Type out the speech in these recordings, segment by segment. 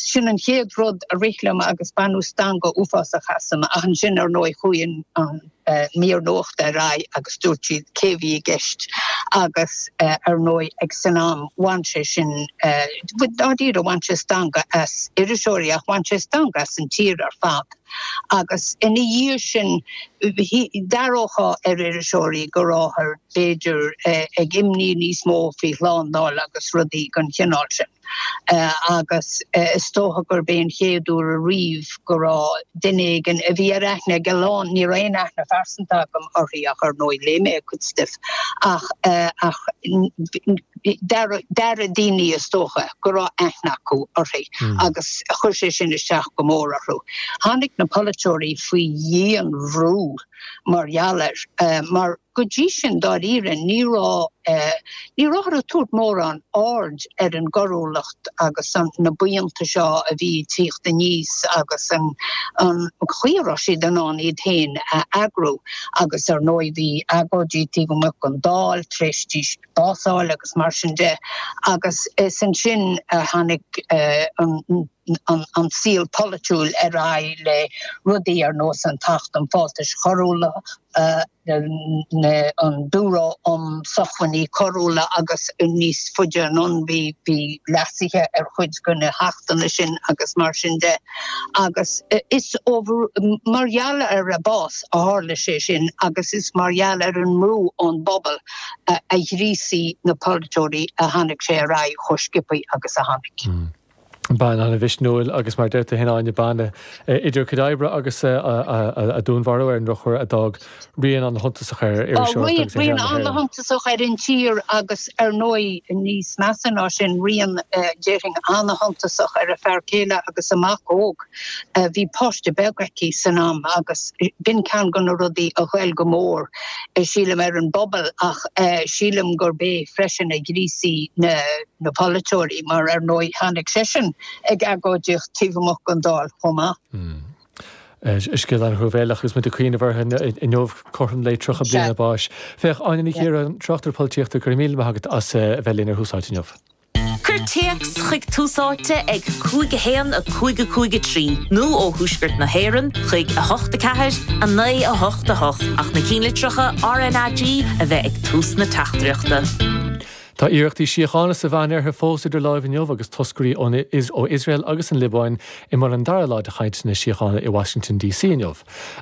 Sin an chéad rud a rith liom agus baineadh stangadh uafásach asam ach ansin ar ndóigh chuaigh an mír nuachta ar aghaidh agus dúirt siad cé a bhí i gceist agus ar ndóigh ag san am bhain sé sin, dáiríre bhain sé stangadh as iriseoirí ach bhain sé stangadh as an tír ar fad. Agus ina dhiaidh sin d'aireofá ar iriseoirí go ráthar b'fhéidir ag imní níos mó faoi shlándáil agus rudaí den chineál sin. agus is dócha gurb é sin an chéad uair ariamh go raibh duine éigin a bhí ar aithne ag a lán, ní raibh aon aithne phearsanta agam uirthi ach ar ndóigh léigh mé a cuid stuif, ach d'airigh daoine is dócha go raibh aithne acu uirthi agus chuir sé sin isteach go mór orthu. Tháinig na polaiteoirí faoi dhian-bhrú mar gheall air mar, Go dtí sin dáiríre ní raibh ní rabhthar ag tabhairt mórán aird ar an gcoiriúlacht agus na buíonta seo a bhí ag tíocht aníos agus an chaoi a raibh siad in ann iad féin a eagrú agus ar ndóigh bhí agóidí taobh amuigh den Dáil tar éis di básáil agus mar sin de agus is ansin a tháinig an an saol polaitiúil ar aghaidh le rudaí ar nós an tAcht um Fáltais Choiriúla, an Biúró um Sócmhainní Coiriúla agus níos faide anonn bhí leasuithe ar chuid de na hAchtanna sin agus mar sin de agus is ó mar gheall ar a bás a tharla sé sin agus is mar gheall ar an mbrú ón bpobal a ghríosaigh na polaiteoirí a tháinig sé ar aghaidh chomh sciobtha agus a tháinig. bean an-mhisniúil agus mar a deir tú fhéin Áine, bean a, idir a cuid oibre agus a dúnmharú ar an ndrochuair, a d'fhág rian an-shuntasach ar iriseoireacht agus ar shaol na hÉireann. Rian an-shuntasach ar an tír agus ar ndóigh níos measa ná sin rian déarfainn an-shuntasach ar a fear céile agus a mac óg. Bhí páiste beag aici san am agus b'in ceann de na rudaí a ghoill go mór sílim ar an bpobal ach sílim gurb é freisin a ghríosaigh na na polaiteoirí, mar ar ndóigh tháinig seisean ag agóidíocht taobh amuigh den Dáil chomh maith. Is scéal an-thruamhéileach agus muid ag cuimhneamh uirthi inniu, cothrom lae 30 bliain a báis. Féach, Áine Ní Chiaráin, tráchtaire polaitíochta, go raibh míle maith agat as a bheith linn ar Tús Áite inniu. Cuir téacs chuig Tús Áite ag 5 1 5 5 3 nó ó Thuaisceart na hÉireann chuig 8 4 9 8 8 ach na cinnlitreacha RNAG a bheith ag tús na teachtaireachta. Tá iarrachtaí síochána sa Mheánoirthear fós idir láimh inniu agus toscairí ó Iosrael agus an Liobáin i mbun an dara lá de chainteanna síochána i Washington DC inniu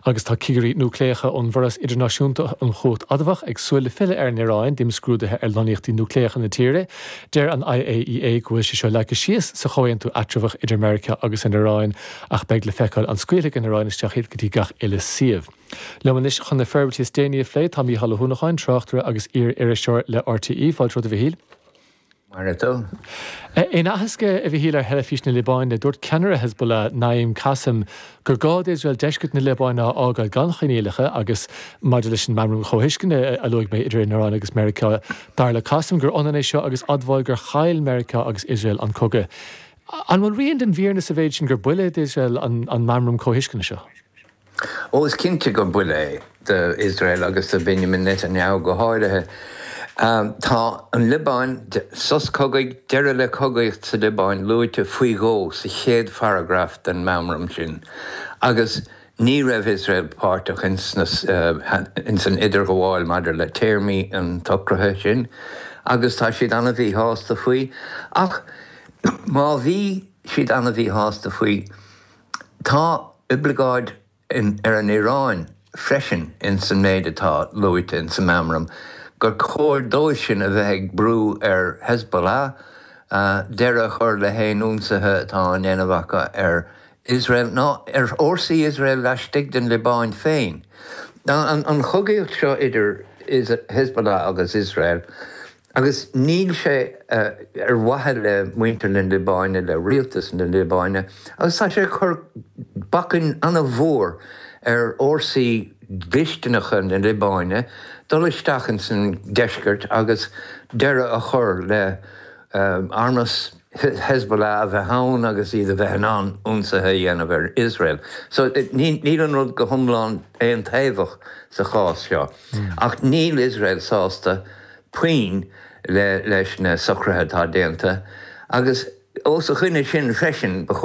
agus tá cigirí núicléacha ón bhForas Idirnáisiúnta um Chumhacht Adamhach ag súil le filleadh ar an Iaráin d'imscrúduithe ar lonnaíochtaí núicléacha na tíre. Deir an IAEA go bhfuil sé seo leagtha síos sa chomhaontú eatramhach idir Meiriceá agus an Iaráin ach beidh le feiceáil an scaoilfidh an Iaráin isteach iad go dtí gach uile suíomh. Liom anois chun na forbairtí is déanaí a phlé tá Mícheál Ó hUanacháin, tráchtaire agus iar-iriseoir le RTÉ. Fáilte romhat a Mhichíl. Go maire tú. In aitheasc, a Mhichíl, ar Theilifís na Liobáine, dúirt ceannaire Hezbollah, Naim Kassem, gur gá d'Iosrael deisceart na Liobáine a fhágáil gan choinníollacha agus, maidir leis an Meamram Comhthuisceana a luaigh mé idir an Iráin agus Meiriceá, dar le Kassem gur ionann é seo agus admháil gur chaill Meiriceá agus Iosrael an cogadh. An bhfuil rian den bhfírinne sa mhéid sin gur buille d'Iosrael an Meamram Comhthuisceana seo? Ó is cinnte gur buille é do Iosrael agus do Benjamin Netanyahu go háirithe. Tá an Liobáin, sos cogaidh, deireadh le cogaíocht sa Liobáin luaite faoi dhó sa chéad pharagraf den meamram sin agus ní raibh Iosrael páirteach ins an idirghabháil maidir le téarmaí an tsocraithe sin agus tá siad an-mhíshásta faoi. Ach má bhí siad an-mhíshásta faoi, Tá oibleagáid ar an Iráin freisin ins an méid atá luaite ins an meamram gur cóir dóibhsean a bheith ag brú ar Hezbollah deireadh a chur le haon ionsaithe atá á ndéanamh acu ar Iosrael ná ar fhórsaí Iosrael laistigh den Liobáin féin. An chogaíocht seo idir Hezbollah agus Iosrael, Agus níl sé ar mhaithe le muintir na Liobáine, le rialtas na Liobáine, agus tá sé ag cur bacainn ana-mhór ar fhórsaí dlisteanacha na Liobáine dul isteach ins an deisceart agus deireadh a chur le armas Hezbollah a bheith ann agus iad a bheith in ann ionsaithe a dhéanamh ar Iosrael. So níl an rud go hiomlán aontaobhach sa chás seo. Ach níl Iosrael sásta puinn leis na socruithe atá déanta agus os a choinne sin freisin ba chóir.